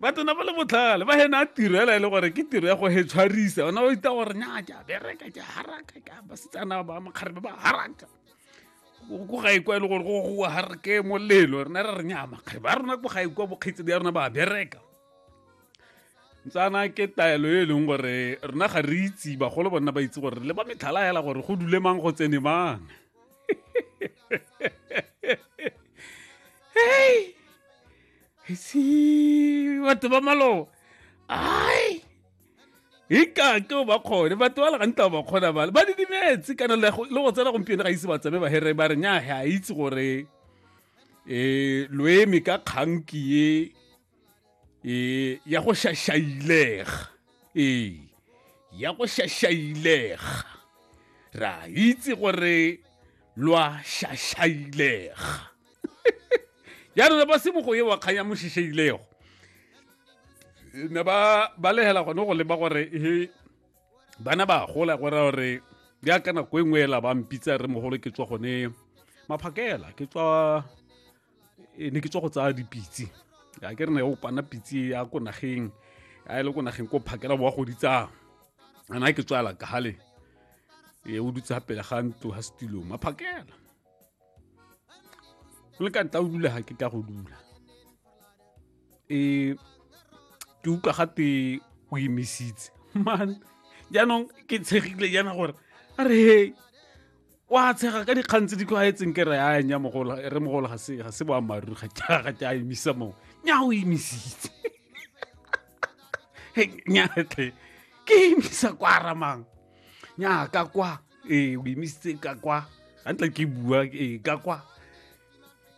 ba tsena ba le botlhale ba hena a tiro ela e le gore ke tiro ya go hetshwarisa ona o ita gore nya ke a bereka ke a haraka ke a basetsana ba makgare ba ba haraka ko ga ikwa e le gore go harake molelo rena re re nya makgare ba rona ko ga ikwa bokgaitse ya rona ba bereka ntsana ke taelo e leng gore rona ga re itse bagolo bona ba itse gore le ba metlhala hela gore go dule mang go tsene mang hey si batho ba maloba ai ikake o ba kgone batho ba le gantsi ba kgona bale ba didimetse kana le go tsena gompieno ga ise ba tsame bahere ba re nya ga itse gore um loeme ka kganki e e ya go shashailega ee ya go shashailega ra itse gore lwa shashailega ya rona ba sebogo ye wa kgang ya mosheshailego ne ba balegela gone go leba gore e bana ba gola gore gore ya ka nako e nngwe ela ba mpitsa re mogolo ke tswa gone maphakela ke tswa e ne ke tswa go tsaya dipitse a ke re ne o pana pitse ya ko nageng a e le ko nageng ko phakela boa go ditsa ana ke tswala ka hale e o dutse pele ga ntlo ha setilo ma phakela le ka ntla o dula ha ke ka go dula e ke utlwa gate o emisitse man jaanong ke tshegile jaana gore a re hei wa tshega ka dikgang tse di tlwaetseng ke re a nya mogolo re mogolo ga se ga se boammaaruri ga ke ga ke a emisa mo nya o emisitse nya tle ke emisa kwa ramang nya ka kwa ee o emisitse ka kwa ga ntla ke bua ee ka kwa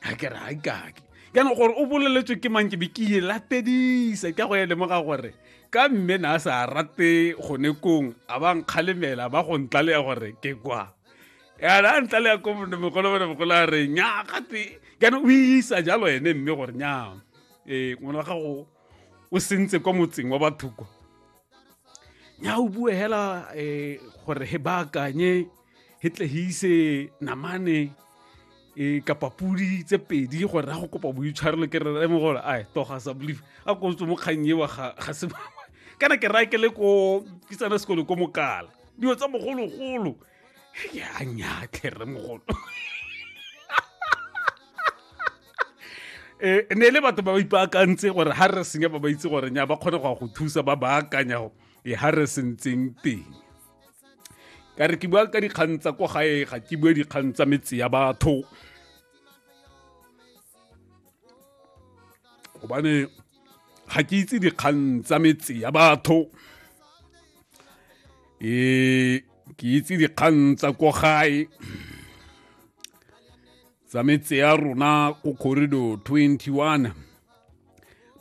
a ke re ga kake jaanong gore o boleletswe ke mang ke be ke e latedisa ka go e lemoga gore ka mme na a sa rate gone kong a ba nkgalemela ba go ntlaleya gore ke kwa yana a ntlaleya ko mogolo bone mogolo a re nya gate jaanong o isa jalo ene mme gore nya ee ngwana wa gago o sentse kwa motseng wa batho kwa nya o bue hela um gore he baakanye he tle he ise namane e kapa pudi tse pedi gore ra go kopa boitshwarelo ke re re mo gore a toga sa believe a ko tswe mo kgang ewa ga ga se ba kana ke ra ke le ko ke tsana sekolo ko mokala dilo tsa mogolo golo ya nya tle re mogolo e ne le batho ba ba ipaakantse gore ha re senya ba ba itse gore nya ba kgone go go thusa ba baakanya e ha re sentseng teng ka re ke bua ka dikgang tsa kwa gae ga ke bue dikgang tsa metse ya batho gobane ga ke itse dikgang tsa metse ya batho e ke itse dikgang tsa kwa gae tsa metse ya rona ko corridor 21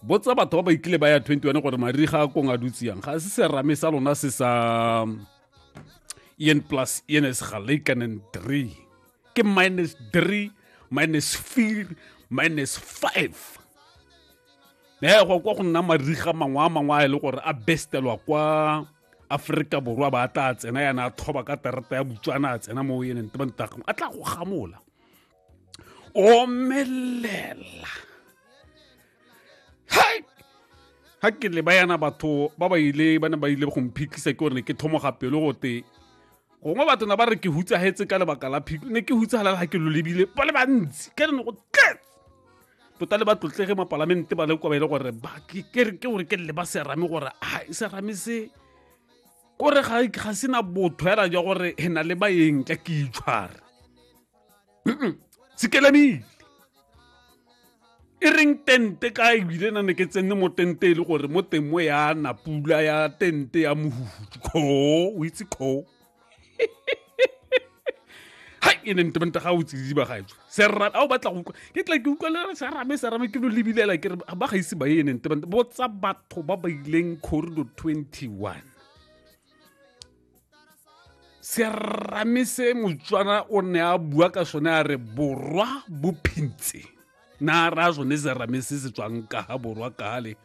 botsa batho ba ba ikile ba ya 21 gore mariga a kong a dutsiyang ga se serame sa lona se sa en plus en is gelykanen 3 ke minus 3 minus 4 minus 5 ne go kwa go nna mariga mangwe a mangwe a e le gore a bestelwa kwa aforika borwa ba tla tsena yana a thoba ka terata ya botswana a tsena mo eneng te bantago a tla go gamola omelela hai ga ke le ba yana batho ba ba ile ba ne ba ile go mphitlhisa ke gore ne ke thomoga pelo gote gongwe batho na ba re ke hutsagetse ka lebaka la phiko ne ke hutsagalela ga ke lo lebile ba le bantsi ka re ne go tletse tota le ba tlotlege mapalamente ba le kwa ba ile gore ke gore ke le ba serame gore a e serame se kore ga sena botho hela jwa gore e na le bayeng ka ke itshware se kelamile e reng tente ka ebile na ne ke tsene mo tente e le gore mo teng mo ya napula ya tente ya mohuhutu koo o itse koo hai e ne ntemente ga o tsididi ba gaetso serame a o batla go ke tla ke utlwalela serame serame ke lo lebilela ke re ba ga ise ba ye ne ntemente botsa batho ba ba ileng corridor 21 serame se motswana o ne a bua ka sone a re borwa bo phintse na ra sone serame se se tswang ka ga borwa kale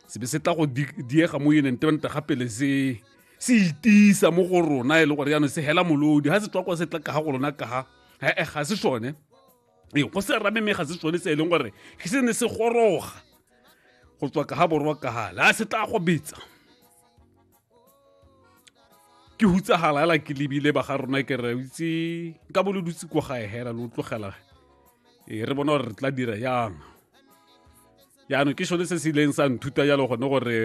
se be se tla go diega mo yone ntemente gape le se se itisa mo go rona e le gore jaanong se hela molodi ga se tswa kwa se tla kaga go lona kaga ee ga se sone ee go se rame mme ga se sone se e leng gore ke se ne se goroga go tswa kaga borwa kaga le a se tla go betsa ke hutsagala ela ke lebile ba ga rona ke re itse ka bo lo dutse ko gae hela lo tlogela ee re bona gore re tla dira yang jaanong ke sone se se ileng sa nthuta jalo gone gore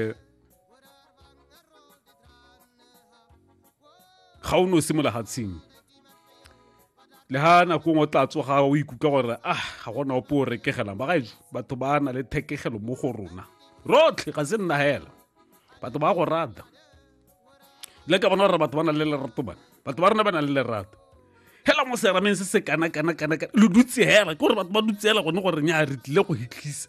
ga o ne o se mo lehatsheng le ha nako ngwe o tla tsoga o ikutlwa gore ah ga gona ope o rekegelang bagaetso batho ba na le thekegelo mo go rona rotlhe ga se nna hela batho ba go rata le ka bona gore batho ba na le lerato bana batho ba rona ba na le lerato hela mo serameng se se kana kana kana kana lo dutse hela ke gore batho ba dutse hela gone gore nya re tlile go hitlhisa